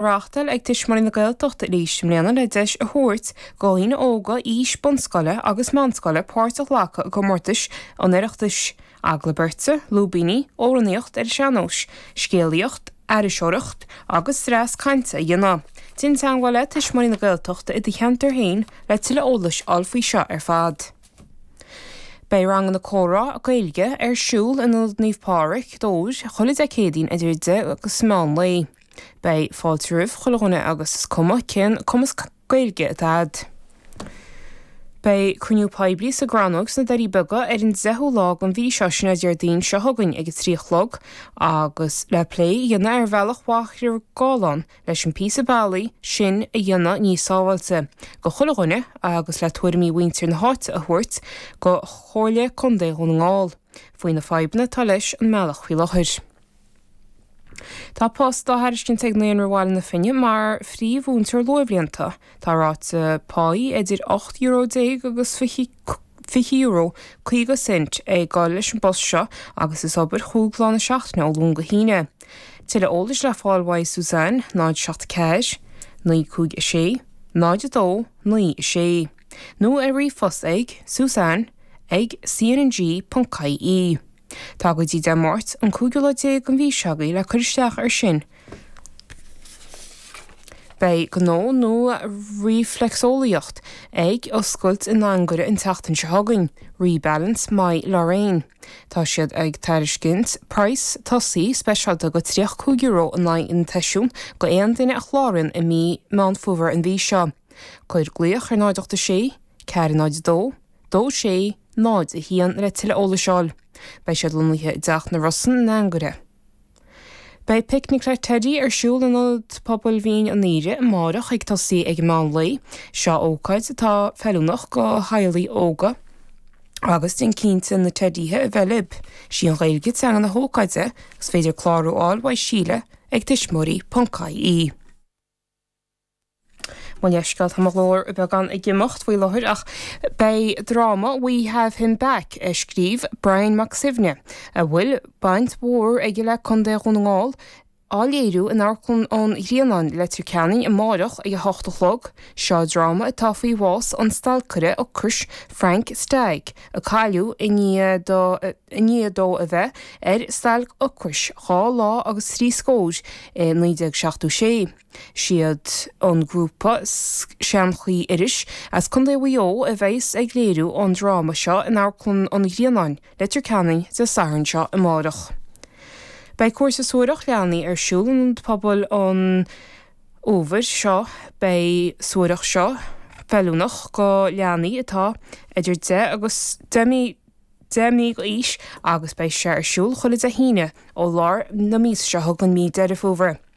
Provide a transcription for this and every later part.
reáchtáil ag Tuismitheoirí na Gaeltachta arís i mbliana le deis a thabhairt do dhaoine óga aois bunscoile agus meánscoile páirt a ghlacadh i gcomórtais an Oireachtais, Agallamh Beirte, Lúibíní, Amhránaíocht ar an Sean-Nós, Scéalaíocht, Aithriseoireacht agus dreas cainte a dhéanamh. Déan teagmháil le Tuismitheoirí na Gaeltachta i do cheantar féin le tuilleadh eolais a fháil faoi seo ar fad. Beidh ranganna comhrá Gaeilge ar siúl in Ionad Naomh Pádraig, Dobhar, chuile Dé Céadaoin idir 10 agus meán lae. Beidh fáilte roimh chuile dhuine agus is cuma cén cumas Gaeilge atá agat. Beidh cruinniú poiblí sa gCrannóg sna Doirí Beaga ar an 10ú lá den mhí seo, sin é Déardaoin seo chugainn ag a trí a chlog, agus le plé a dhéanamh ar bhealach Mhachaire Gathlán leis an píosa bealaigh sin a dhéanamh níos sábháilte go chuile dhuine agus le tuairimí mhuintir na háite a thabhairt go Comhairle Contae Dhún na nGall faoi na fadhbanna atá leis an mbealach faoi láthair. Tá post á thairiscint ag Naíonra Bhaile na Finne mar phríomh-mhúinteoir luathbhlianta. Tá ráta páí idir ocht euro déag agus fiche euro, caoga cent, ag gabháil leis an bpost seo agus is obair chúig lá na seachtaine ó Luan go hAoine. Tuilleadh eolais le fáil uaidh Suzanne, 074 956 0296, nó ar ríomhphost ag, suzanne ag cnng.ie. Tá go dtí Dé Máirt, an cúigiú lá déag den mhí seo agaibh le cur isteach air sin. Beidh gnó nua ríflexiolaíocht ag oscailt in Anagaire an tseachtain seo chugainn, Rebalance by Lorraine. Tá siad ag tairiscint praghas tosaigh speisialta go €35 in aghaidh an tseisiúin go aon duine a chláraíonn i mí Meán Fómhair an mhí seo. Cuir glaoch ar 0 86 4 02 2 6 0 1 le tuilleadh eolais fháil. Beidh siad lonnaithe i dTeach na Rosann in Anagaire. Beidh Picnic le Teddy ar siúl in Ionad Pobail Mhín an Aoire amáireach ag tosaí ag meán lae. Seo ócáid atá feiliúnach go theaghlaigh óga agus déan cinnte na teidíthe a bheith libh. Sí an Ghaeilge teanga na hócáide agus is féidir clárú fháil uaidh Síle ag tuismitheoirí.ie. Mo leithscéal, tá mo ghlór beagán ag imeacht faoi láthair ach beidh dráma 'We Have Him Back' a scríobh Brian Mac Suibhne, a bhfuil baint mhór aige le Contae Dhún na nGall, á léiriú in Amharclann an Ghrianáin, Leitir Ceanainn amárach ag a hocht a chlog. Seo dráma atá faoi bhás an stailceire ocrais Frank Stagg, a cailleadh i ndiaidh dó a bheith ar stailc ocrais dhá lá agus trí scór i 1976. siad an grúpa Seanchaí Iorrais as Contae Mhaigh Eo a bheas ag léiriú an dráma seo in Amharclann an Ghrianáin, Leitir Ceanainn, Dé Sathairn seo amárach. Beidh cúrsa suathaireacht leanaí ar siúl in Ionad Pobail an fhómhair seo. Beidh suathaireacht seo feiliúnach do leanaí atá idir deich agus deich mí d'aois agus beidh sé ar siúl chuile Dé hAoine ó lár na míosa seo chugainn mí Deireadh Fómhair.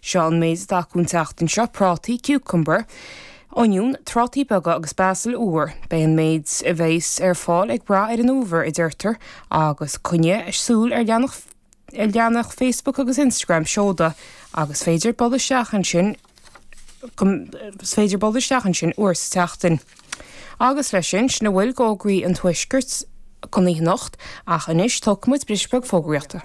Seo an méid atá acu an tseachtain seo, prátaí, cucumber, oinniún, trátaí beaga agus basal úr. Beidh an méid a bheas ar fáil ag brath ar an fhómhar, a deirtear, agus coinnigh súil ar leathanach Facebook agus Instagram Seoda agus is féidir dul isteach ansin, féidir dul isteach ansin uair sa tseachtain. Agus leis sin, sin a bhfuil d'Fhógraí an Tuaiscirt don oíche anocht, ach anois tógfaimid bris beag fógraíochta.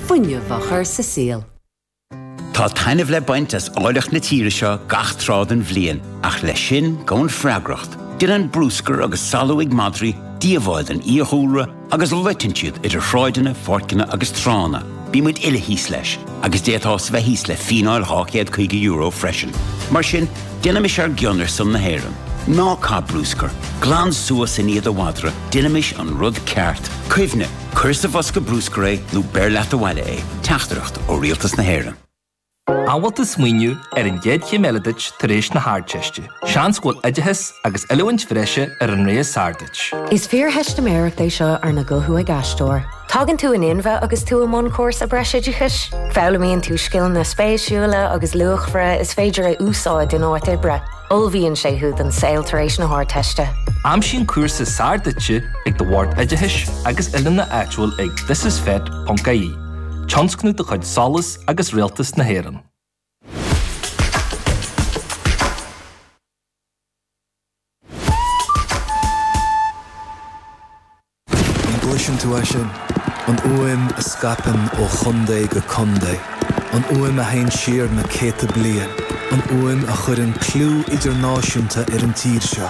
fuinneamh a chur sa saol. Tá taitneamh le baint as áilleacht na tíre seo gach tráth den bhliain, ach leis sin gabhann freagracht. Déanann bruscar agus salú ag madraí díobháil don fhiadhúlra agus loiteann siad idir shráideanna, pháirceanna agus tránna. Bímid uile thíos leis, agus d'fhéadfá bheith thíos le fíneáil €250 freisin. Mar sin, déanaimis ár gcion ar son na hÉireann. Ná caith bruscar, glan suas i ndiaidh do mhadra, déanaimis an rud ceart. Cuimhnigh. Cuir sa bhosca bruscair é nó beir leat abhaile é. Teachtaireacht ó Rialtas na hÉireann. An bhfuil tú ag smaoineamh ar an gcéad chéim eile duit tar éis na hArdteiste? Seans go bhfuil oideachas agus oiliúint bhreise ar an rogha is fearr duit. Is fíortheistiméireacht é seo arna guthú ag aisteoir. Tagann tú in inmhe agus tú i mbun cúrsa breisoideachais. Foghlaimíonn tú scileanna spéisiúla agus luachmhara is féidir a úsáid in áit oibre. Ullmhaíonn sé thú don saol tar éis na hArdteiste. Aimsigh an cúrsa is fearr duit ag do Bhord Oideachais agus Oiliúna áitiúil ag thisisfet.ie, tionscnamh de chuid SOLAS agus Rialtas na hÉireann. An gcloiseann tú é sin? An fhuaim a scaipeann ó chontae go contae. An fhuaim a théann siar na céadta bliain. An fhuaim a chuireann clú idirnáisiúnta ar an tír seo.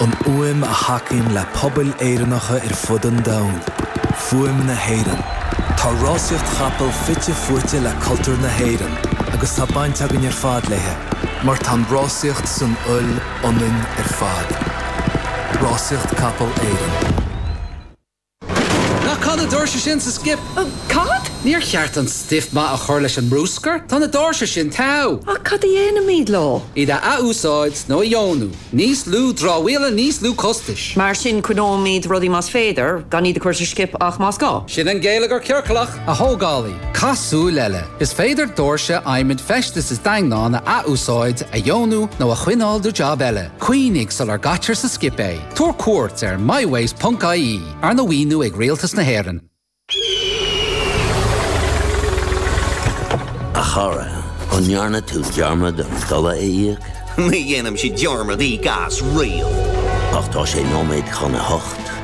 An fhuaim a thacaíonn le pobail Éireannacha ar fud an domhain. Fuaim na hÉireann. Tá rásaíocht chapall fite fuaite le cultúr na hÉireann agus tá baint againn ar fad léi mar tá an rásaíocht san fhuil ionainn ar fad. Rásaíocht Capall Éireann. Ná caith na doirse sin sa skip! Cad? Níor cheart an stuif maith a chur leis an mbruscar? Tá na doirse sin togha! Ach cad a dhéanfaimid leo? Iad a athúsáid nó a dheonú. Níos lú dramhaíola, níos lú costais. Mar sin, coinneoimid rudaí más féidir, gan iad a chur sa skip ach más gá. Sin an geilleagar ciorclach! A thógálaí, caith súil eile! Is féidir doirse adhmaid feistis is daingneáin a athúsáid, a dheonú nó a choinneáil do jab eile. Cuimhnigh sular gcaitear sa skip é. Tabhair cuairt ar mywaste ponc ie, arna mhaoiniú ag Rialtas na hÉireann. A chara, an ndearna tú dearmad an dola a íoc? Ní dhéanaimse dearmad íoc as riamh. Ach tá sé nóiméad chun a hocht.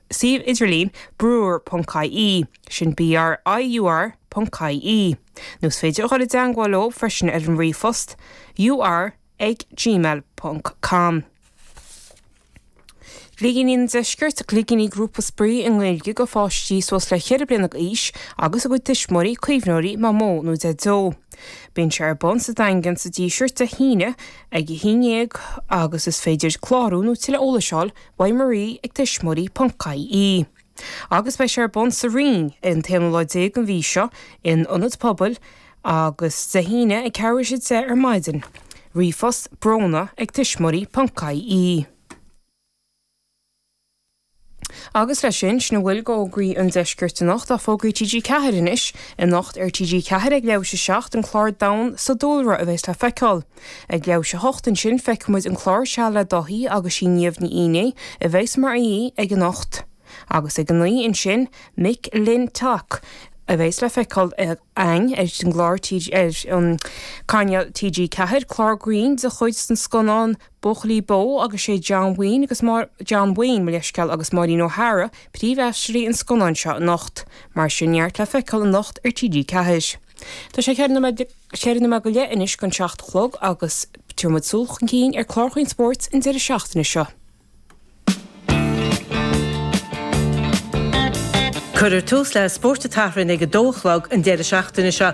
Suíomh idirlín, Briur ponc IE, sin BRIUR ponc IE, nó is féidir a dhul i dteangmháil leo freisin ar an ríomhphost, ur ag gmail ponc com. Gligíní an Deiscirt, Gligíní Grúpa spraoi i nGaeilge do pháistí suas le 4 bliana d'aois agus a gcuid tuismitheoirí, caomhnóirí, mamó nó deaideo. Bíonn sé ar bun sa Daingean sa Díseart Dé hAoine ag 11 agus is féidir clárú nó tuilleadh eolais a fháil ag. Marie ag Tuismitheoirí ponc, ie agus beidh sé ar bun sa Rinn ar an t-aonú lá déag den mhí seo in Ionad Pobail agus Dé hAoine ag ceathrú tar éis a deich ar maidin. Ríomhphost, brona ag tuismitheoirí ponc, ie Agus leis sin, sin a bhfuil de fhógraí an Deiscirt anocht ach fógraí TG4 anois, Anocht ar TG4 ag leathuair tar éis a 7, an clár Domhan sa Dúlra a bheas le feiceáil. Ag leathuair tar éis a 8 ansin feicfimid an clár Seal le Dáithí agus sí Niamh Ní Fhínnéidh a bheas mar aoi aige anocht. Agus ag 9 ansin McLintock a bheas le feiceáil ar an gclár Cainéal TG4, clár grinn de chuid na scannán Buachaillí Bó agus sé John Wayne agus John Wayne, mo leithsceal, agus Maureen O'Hara príomhaisteoirí an scannáin seo anocht. Mar sin neart le feiceáil anocht ar TG4. Tá sé cheithre nóiméad go. Sé cheithre nóiméad go leith anois chun a seacht a chlog agus tabharfaidh muid súil chun cinn ar chláracha spóirt an deireadh seachtaine seo. Cuirfear tús le Spórt an tSathairn ag a dó a chlog an deireadh seachtaine seo